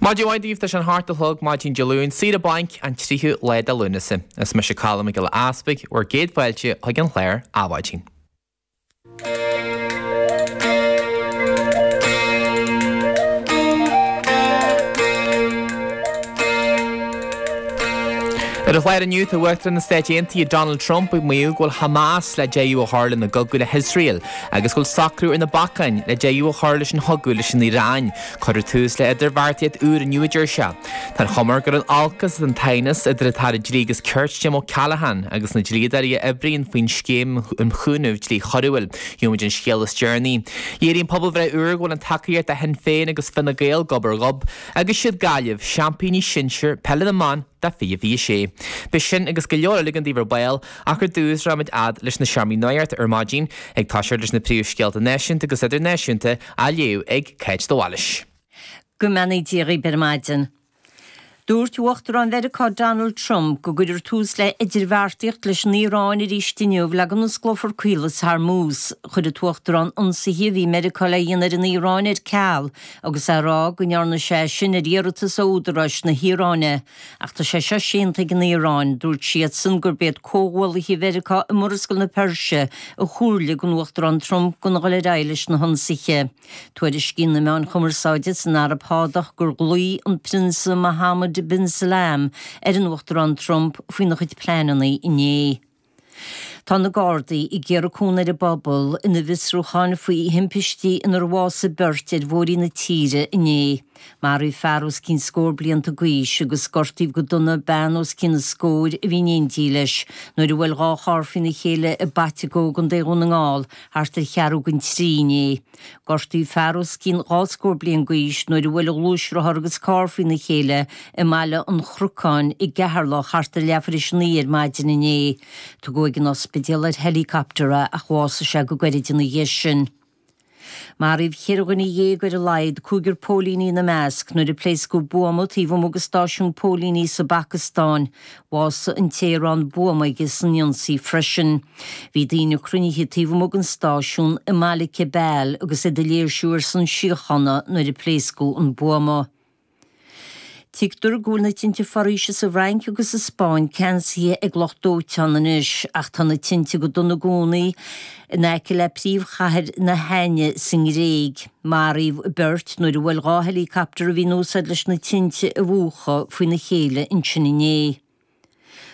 Maidin mhaith daoibh, tá sé an hocht a chlog maidin Dé Luain, saoire bainc, an tríú lá de Lúnasa. Is mise Colm Mac Giolla Easpaig, bhur gcéad fáilte chuig an chlár Adhmhaidin. Ar an chlár inniu, tá Uachtarán na Stáit Aontaithe Donald Trump ag maíomh go bhfuil Hamas le deireadh a chur lena gcogadh le hIosrael. agus go bhfuil socrú ar na bacáin le deireadh a chur leis an chogadh leis an Iaráin. Cuireadh tús le idirbheartaíocht úr inniu a deir sé. Tá an chuma air gur in olcas is an t-aighneas idir an tAire Dlí agus Cirt Jim O'Callaghan agus na dlíodóirí a oibríonn faoin scéim um chúnamh dlí choiriúil. Gheobhaimid an scéal is deireanaí. Léiríonn pobalbhreith úr go bhfuil an tacaíocht do Shinn Féin agus Fine Gael gob ar ghob agus is iad Gaillimh, seaimpíní sinsir peile na mban do 2026. Beidh sin agus go leor eile againn daoibh ar ball, Ach ar dtús, rachaimid fhad leis na seomraí nuachta ar maidin, ag toiseacht leis na príomhscéalta náisiúnta agus idirnáisiúnta, á léamh ag Cáit de Bhailís. Go mbeannaí Dia dhaoib ar maidin. Dúirt Uachtarán Mheiriceá Donald Trump go gcuirfear tús le idirbheartaíocht leis an Iaráin arís inniu le go n-osclófar Caolas Hormuz. Chuir an tUachtarán ionsaithe a bhí Meiriceá le dhéanamh ar an Iaráin ar ceal, agus é a rá go ndearna sé é sin ar iarratas ó údaráis na hIaráine. Ach tá sé seo séanta ag an Iaráin. Dúirt siadsan gurb iad comhghuallaithe Mheiriceá i Murascaill na Peirse a chomhairligh don Uachtarán Trump gan a dhul ar aghaidh leis na hionsaithe. Tuairiscíonn na meáin chumarsáide san Araib Shádach gur ghlaoigh an Prionsa Mohammed bin Salman ar an Uachtarán Trump faoina chuid pleananna inné. Tá na Gardaí ag iarraidh cúnamh ar an bpobal ina bhfiosrúcháin faoi thimpistí inar bhásaigh beirt ar bhóithrí na tíre inné. Maraíodh fear os cionn scór blianta d'aois agus gortaíodh go dona bean os cionn an scóir a bhí in éindí leis nuair a bhuail dhá charr faoina chéile i bPaiteagó, i gContae Dhún na nGall, thart ar cheathrú don trí inné. Gortaíodh fear os cionn dhá scór bliain d'aois nuair a bhuail a ghluaisrothar agus carr faoina chéile i mBaile an Chnocáin i gCeatharlach thart ar leath tar éis a naoi ar maidin inné. Tugadh ag an ospidéal ar helicopter é ach bhásaigh sé go gairid ina dhiaidh sin. Maraíodh ceithre dhuine dhéag ar a laghad, cúigear póilíní ina measc, nuair a pléascadh buama taobh amuigh de stáisiún póilíní sa bPacastáin. Bhásaigh an té a raibh an buama aige san ionsaí freisin. Bhí daoine cruinnithe taobh amuigh den stáisiún i mbaile Kabal agus iad ag léirsiú ar son síochána nuair a pléascadh an buama. Tuigtear go bhfuil na tinte foraoise sa bhFrainc agus sa Spáinn ceansaithe ag lucht dóiteáin anois, ach tá na tinte go dona i gcónaí in aice le príomhchathair na hAithne sa nGréig. Maraíodh beirt nuair a bhuail dhá helicopter a bhí in úsáid leis na tinte a mhúchadh faoina chéile ansin inné.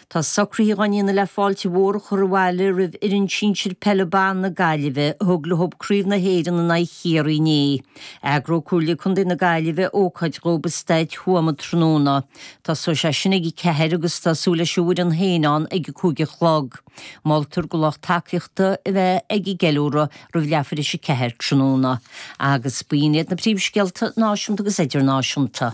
Tá socruithe dhá ndéanamh le fáilte mhór a chur abhaile roimh fhoireann sinsir peile ban na Gaillimhe a thug leo Craobh na hÉireann in aghaidh Chiarraí inné. Eagróidh Comhairle Contae na Gaillimhe ócáid dóibh i Staid Thuama tráthnóna. Tosóidh sé sin ag a ceathair agus tá súil leis an bhfoireann féin ann ag a cúig a chlog. Moltar go lucht tacaíochta a bheith ag an gceiliúradh roimh leath tar éis a ceathair tráthnóna, agus b'in iad na príomhscéalta náisiúnta agus idirnáisiúnta.